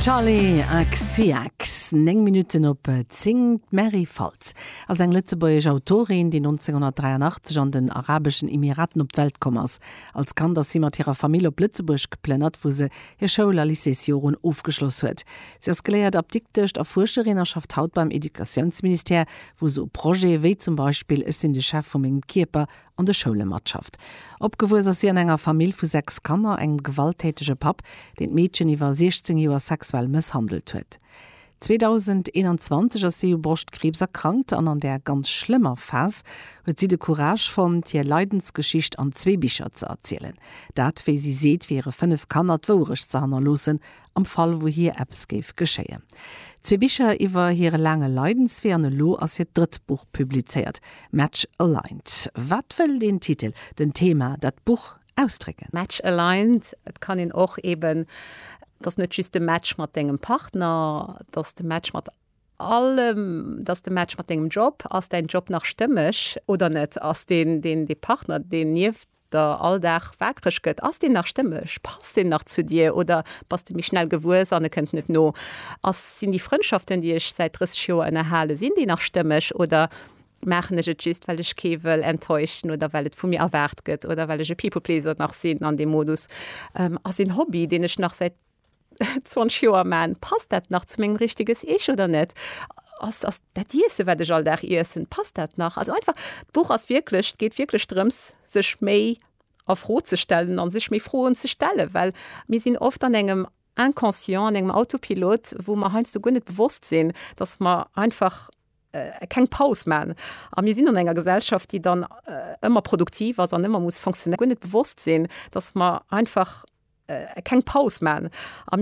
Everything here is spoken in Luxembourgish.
Charly XCX, 9 Minutten op 10. D'Mary Faltz ass eng lëtzebuergesch Autorin, déi 1983 an den Arabeschen Emiraten op d'Welt komm ass. Als Kand ass si mat hirer Famill op Lëtzebuerg geplënnert, wou se hir Schoul a Lycéesjoren ofgeschloss huet. Si ass geléiert Apdiktesch a Fuerscherin a schafft haut beim Educatiounsministère, wou se u Projete wéi zum Beispill Ech sinn de Chef vu mengem Kierper an de Schoule matschafft. Opgewuess ass si an enger Famill vu sechs Kanner, engem gewalttätege Papp, deen d'Meedchen iwwer 16 Joer sexuell mësshandelt huet. 2021 ass si u Broschtkriibs erkrankt an an där ganz schlëmmer Phas huet si de Courage fonnt, hir Leidensgeschicht an zwee Bicher ze erzielen. Dat, wéi si seet, wiere fënnef Kanner d'Wouerecht ze hannerloossen am Fall wou hir eppes géif geschéien. Zwee Bicher iwwer hire laange Leidenswee an elo ass hiert drëtt Buch publizéiert, Match Aligned. Wat wëll den Titel, den Thema, dat Buch ausdrécken? Match Aligned, et kann een och eben, et ass net just de Match mat dengem Partner, et ass de Match mat allem, et ass de Match mat dengem Job, ass däin Job nach stëmmeg oder net, ass dee Partner deen nieft de Alldag waakreg gëtt, ass deen nach stëmmeg, passt en nach zu dir oder bass de méi schnell gewuess an e kënnt net no? Ass, sinn déi Frëndschaften, déi ech säit 30 Joer ënnerhalen, sinn déi nach stëmmeg oder maachen ech et just, well ech kee wëll enttäuschen oder well et vu mir erwaart gëtt oder well ech e People-Pleaser nach sinn an deem Modus? Ass een Hobby, deen ech nach säit 20 Joer man, passt dat nach zu mengem richteges Ich oder net? Ass, ass dat Iessen, wat ech all Dag iessen, passt dat nach? Also einfach, d'Buch ass wierklech, et geet wierklech drëms, sech méi a Fro ze stellen an sech méi Froen ze stellen, well mir sinn oft an engem Inconscient, an engem Autopilot, wou mer heiansdo guer net bewosst sinn, dass mer einfach keng Paus man a mir sinn an enger Gesellschaft, déi dann ëmmer produktiv ass an ëmmer muss fonctionnéieren, guer net bewosst sinn, dass mer einfach keng Paus man a mir.